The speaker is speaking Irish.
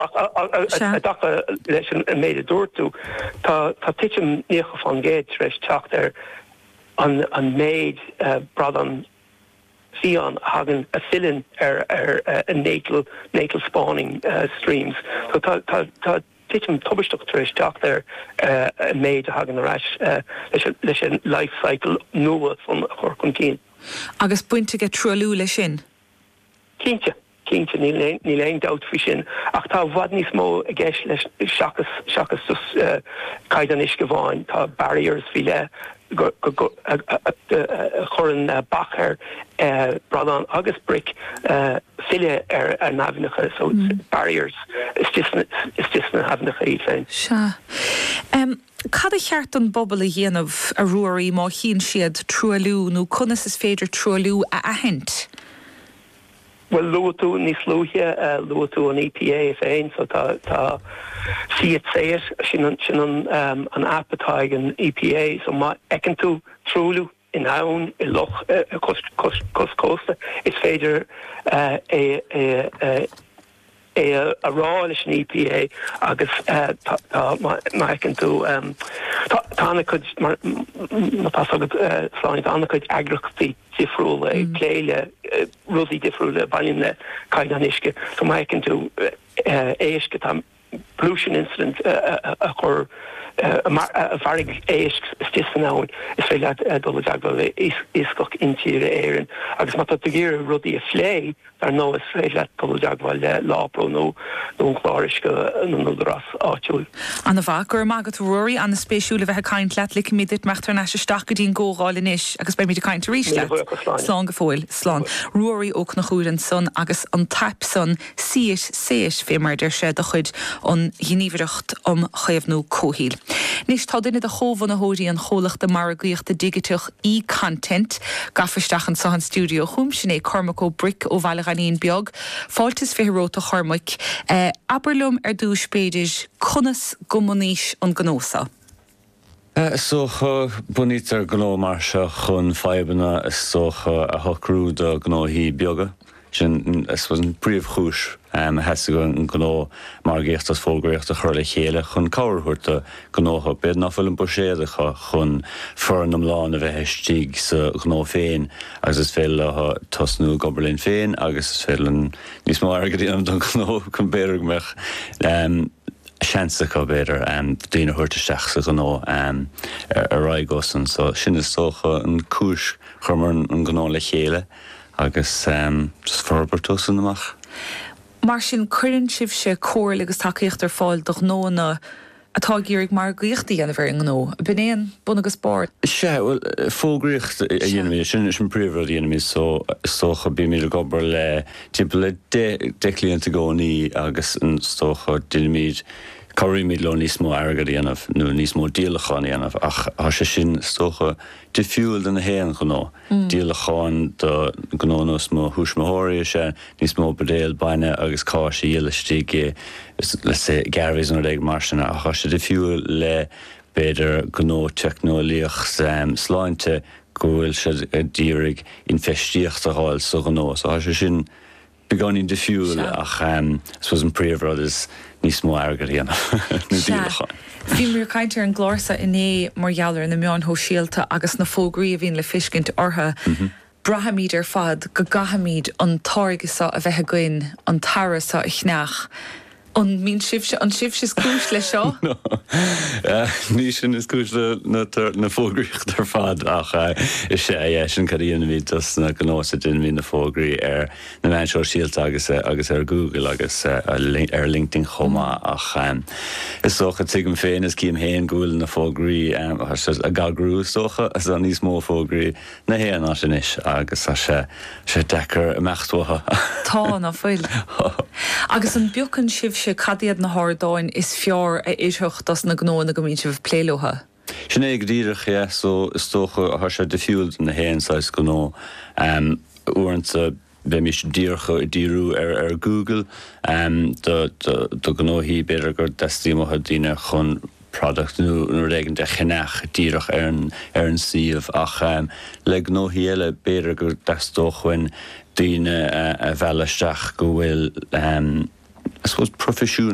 I dtaca leis an méid a dúirt tú, tá titim 90% tar éis teacht ar an méid bradán fiáin a thagann, a filleann ar natal spawning streams. So tá titim tubaisteach tar éis teacht ar an méid a thagann ar ais leis an life cycle nua san a chur chun cinn. Agus baint aige truailliú leis sin? Cinnte, cinnte, níl aon dabht faoi sin, ach tá i bhfad níos mó i gceist leis seachas seachas just caighdeán uisce amháin. Tá barriers faoi leith go go go a a chuireann bac ar bradáin agus bric filleadh ar a n-aibhneacha, so barriers istigh istigh sna haibhneacha iad féin. Sea. Cad ba cheart don bpobal a dhéanamh, a Ruairí, má chíonn siad truailliú nó conas is féidir truailliú a aithint? Bhuel, luaigh tú níos luaithe, luaigh tú an EPA féin, so tá, tá See it, say it, sin an, sin an app atá ag an EPA, so má fheiceann tú truailliú, in abhainn, i loch, cois cósta, is féidir é a rá leis an EPA agus tá, má fheiceann tú, tá an-chuid, mar atá's agat, Sláine, tá an-chuid eagraíochtaí difriúla ag plé le rudaí difriúla a bhaineann le caighdeán uisce. So má fheiceann tú éisc atá. pollution incident a chur a mharaigh éisc istigh san abhainn, is féidir leat dul i dteagmháil le Iascach Intíre Éireann. Agus má tá tú ag iarraidh rudaí a phlé, dar ndóigh, is féidir leat dul i dteagmháil le Lawpro nó an Clár Uisce na nÚdarás Áitiúil. Ana mhaith. Go raibh maith agat, a Ruairí, ana spéisiúil a bheith ag caint leat. Ligfimid duit imeacht thar n-ais isteach go dtí an gcomhdháil anois agus beimid ag caint arís leat. Míle buíochas, Sláine. Slán go fóill. Slán. Ruairí Ó Conchúir ansan agus an t-aip san. See it, say it fé mar a deir sé de chuid an Ghníomhaireacht um Chaomhnú Comhshaoil. Anois tá duine de chomhbhunaitheoirí an chomhlachta margaíochta digiteach eContent gafa isteach anso an stiúideo chugam, sin é Cormac Ó Bric ó Bhaile Ghainín Beag. Fáilte is fiche romhat a Chormaic. Abair liom ar dtúis b'fhéidir conas gur bhunaís an gnó so. Is dócha, bunaítear gnó mar seo chun fadhbanna is dócha a shocrú do ghnóthaí beaga. Sin I suppose an príomhchúis a theastaigh an gnó margaíochta agus fógraíochta a chur le chéile chun cabhair a thabhairt do ghnótha, b'fhéidir nach bhfuil an buiséad acu chun foireann iomlán a bheith istigh sa ghnó féin agus is féidir leo tosnú ag obair linn féin agus is féidir linn níos mó airgead a dhéanamh don ghnó chun b'fhéidir go mbeadh. seans acu, b'fhéidir, daoine a thabhairt isteach sa ghnó ar aghaidh uaidh sin. So, sin is dócha an cúis. Chuireamar an gnó le chéile agus just forbairt uaidh sin amach. Mar sin, cuireann sibhse comhairle agus tacaíocht ar fáil do ghnóanna atá ag iarraidh margaíocht a dhéanamh ar an ngnó. B'in é an bunús, ab ea. Sea, bhuel, fógraíocht a dhéanaimid, sin an príomhrud a dhéanaimid. So, is dócha, bímid ag obair le timpeall le deich gcliant i gcónaí agus is dócha déanaimid, cabhraímid leo níos mó airgead a dhéanamh nó níos mó díolachán a dhéanamh ach tá sé sin is dócha difriúil do na haon ghnó. Díolacháin do gnó ar nós mo thuismitheoirí is ea níos mó buidéal bainne agus cáis a dhíol istigh i let's say Garveys nó rud éigin mar sin ach tá sé difriúil le b'fhéidir gnó teicneolaíocht sláinte, go bhfuil siad ag iarraidh infheistíocht a dh'fháil sa ghnó. So thá sé sin beagáinín difiúil Sea. ach I suppose an príomh rud is níos mó airgead a dhéanamh, nó Sea. díolacháin. Bhíomar ag caint ar an gclár sa inné mar gheall ar na meáin shóisialta agus na fógraí a bhíonn le feiscint ortha. Braithimíd ar fad go gcaithfimíd an táirge seo a bheith againn, an t-earra seo a cheannach. An mbíonn sibhse, an sibhse is cúis leis seo? No, ní sinn is cúis le na fógraíocht ar fad, ach is ea, sin, cad a dhéanaimid dos na gnóthaí ná déanaimid na fógraí ar na meáin shóisialta agus agus ar Google agus ar LinkedIn chomh maith. Ach is dócha, tuigim féin is cím féin go bhfuil na fógraí, a eagrú is dócha, níos mó fógraí na haon áit anois agus tá sé deacair imeacht uathu. Tá, ná fuil? Agus an bpiocann sibhse cad iad na hardáin is fearr a oirfeadh dos na gnóanna go mbíonn sibh ag plé leotha? Sin é go díreach, yeah. So is dócha tá sé difriúil do na haon saghas gnó. Uaireanta bheimis díreach ag díriú ar Google do ghnóthaí, b'fhéidir go dteastaíonn daoine chun product nó rud éigin a cheannach díreach ar an suíomh, ach le gnóthaí eile, b'fhéidir go dteastódh uainn daoine a mhealladh isteach go bhfuil, I suppose, proifisiún.